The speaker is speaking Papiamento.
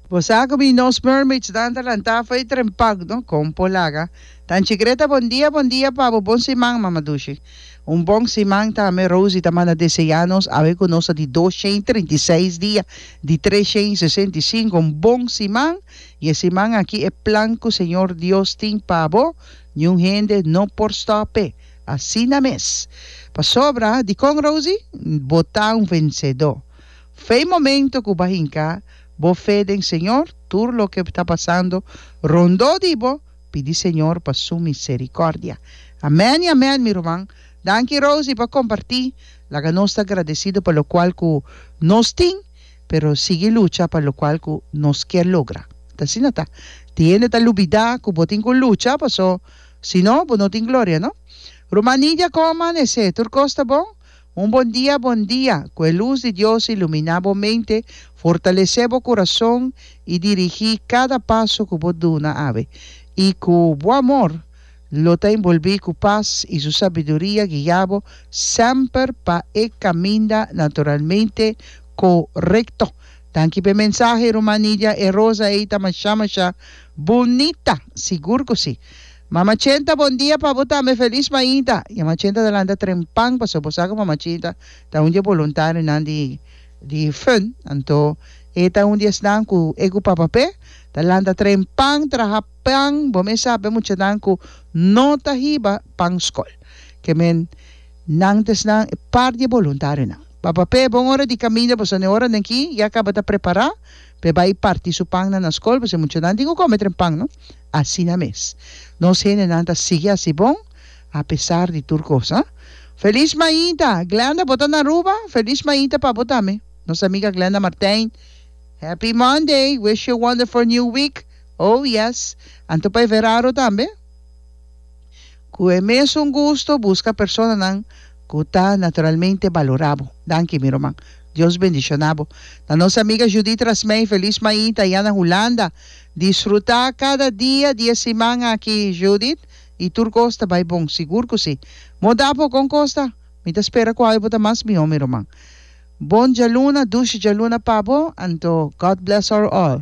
Bo sa cu mi nos mermaids nan ta lanta fo'i trempag, no? Con por laga? Tan chigreta bon dia, bon dia pa bo, bon siman, Mama Dushi. Un bon siman tambe, Rosie ta manda desea nos awe cu nos ta di dos shen trinta i seis dia di tres shen sesenta i sinku. Un bon siman y e siman aki e plan cu Señor Dios tin pa bo niun hende no por stope. Asina mes. Pasobra, dicon Rosie? Bo ta un vencedor. Fe momento cu bo hinca bo fe den Señor, tur loke ta pasando rondó di bo, pidi Señor pa su misericordia. Amen y amen, mi ruman. Danki Rosie pa comparti. Laga nos ta agradecido pa locual cu nos tin, pero sigui lucha pa locual cu nos kier logra. Ta asina ta. Tin hende ta lubida cu bo tin cu lucha, paso si no, bo no tin gloria, no? Ruman Nidia, como amanece? Tur cos ta bon? Un bon dia bon dia, ku e lus di Dios iluminá bo mente, fortalesé bo kurason i dirigí kada paso ku bo duna awe. I ku bo amor lo ta enbolbí ku pas i su sabiduria guiá bo semper pa e kaminda naturalmente korekto. Danki p'e mensahe, Ruman Nidia. E rosa ei ta mashá mashá bunita! Sigur ku sí! Mama Chenta bon dia pa bo tambe felis mainta y mama Chenta ta lanta tren pan pasobra bo sa cu mama Chenta ta un di e boluntarionan di di fun anto e ta un di esnan cu e cu papa pe ta lanta tren pan traha pan bo mes sa be muchanan cu no ta hiba pan scol ke men nan ta esnan e par di e boluntarionan papa pe bon ora di caminda bo sa ne ora den ki ya caba ta prepara P'e bai parti su pan nan na skol p'esei muchanan tin ku kome tren pan no. Asina mes. Nos hendenan ta sigui hasi bon a pesar di tur kos, ha. Feliz Maida! Glenda bo ta na Aruba? Feliz Maida pa bo tambe. Nos amiga Glenda Martijn. Happy Monday! Wish you a wonderful new week! Oh yes! Anto pa e verado tambe. Cu e mesun gusto busca personanan cu ta naturalmente balora bo. Danki mi ruman. Dios bendiciona bo. Na nos amiga Judith Rasmey feliz mañi ta ya na Hulanda. Disfruta cada dia di e siman aki Judith y tur cos ta bay bon. Sigur cu si. Bo da apo con cos ta? Mi ta spera cu awe bo ta mas miho mi ruman. Bon djaluna, dushi djaluna pa bo anto God bless our all.